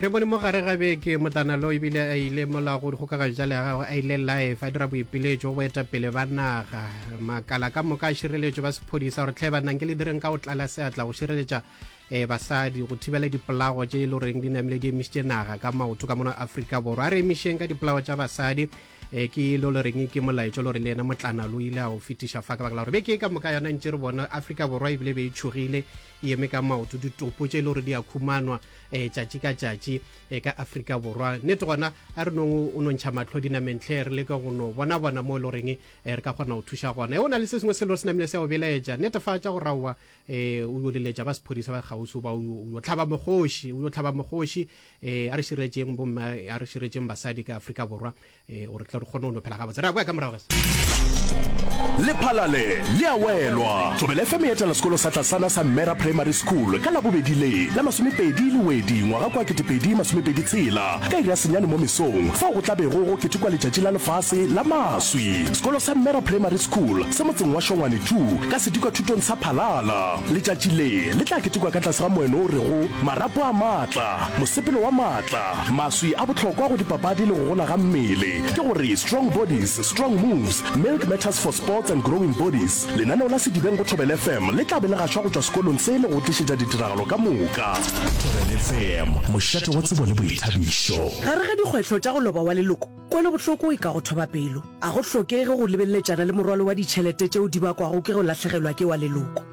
re bone mo gare ga beke motlanalo ebile a ile mola go dikgokagano tša legagwe a ile life a dira boipiletšo go etapele ba naga makala ka moka a šireletšo ba sephodisa gore tlhe bannang ke le direng ka go tlala seatla go šireletša um basadi go thibela dipolago tše e le goreng di namile di emisitše naga ka maoto ka mono aforika borwa a re emišeng ka dipolago tša basadi um ke lo le reng ke molaetšo le gore le ena motlanalo o ile a o fetiša fa ka baka la gore beke ka moka yona ntše re bona aforika borwa ebile be e tšhogile e eme ka maoto ditopo tše e le gore di a khumanwa um tšatši ka tšatši um ka afrika borwa nnete gona a re nong o nontšha matlho dinamentlhe re leka go no bona bona mo e le goreng re ka kgona go thuša gona e o na le se sengwe se le gore se namile se go belaetša netefatša go raowa um o yo leletša ba sephodisa ba kgausi ba o yo tlhaba mogoši o yo tlhaba mogoši um a re širetseng bomma a re širetseng basadi ka afrika borwa ee gore tla re kgone go no phela gabotse re a boya ka morago lephalale le a welwa tsobele fm e etela sekolo sa tlasana sa mmera primary school ka labobedi le la masomepedi le wedi ngwaga kwa ketepedi masomepedi tshela ka ira senyane mo mesong fao go tlabego go ketekwa letšatši la lefase la maswi sekolo sa mmera primary school se motseng wa shongwane tu ka sedikwa thutong sa phalala letšatši le le tla ketekwa ka tlase ga moeno o rego marapo a maatla mosepelo wa maatla Maswi a bohlokwa go dipapadi le go gola ga mmele ke gore Strong Bodies, Strong Moves, Milk Matters for Sports and Growing Bodies. Lenaneo la Sedibeng go Thobel FM le tla be le gašwa go tšwa sekolong se le go tlišetša ditiragalo ka moka. Thobel FM, mošate wa tsebo le boithabišo. Gare ga dikgwetlho tša go loba wa leloko, kwelobohloko e ka go thoba pelo. Ga go hlokege go lebelletšana le morwalo wa ditšhelete tšeo di bakwago ke go lahlegelwa ke wa leloko.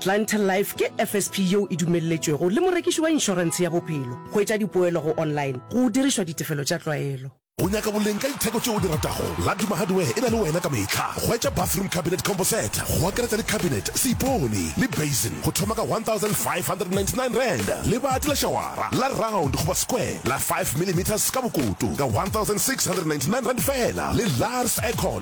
Clientele Life ke FSP yeo e dumelletšwego le morekiši wa inšorentshe ya bophelo go etša dipoelo go online go dirišwa ditefelo tša tlwaelo. O nyaka boleng ka ditheko tšeo o di ratago? Laduma Hardware e na le wena ka mehla. Hwetša bathroom cabinet combo set, go akaretša le cabinet, seipone, le basin, go thoma ka R1,599. Lebati la šawara, la round goba square, la five millimetres ka bokoto, ka R1,699 feela, le Lars Aircon,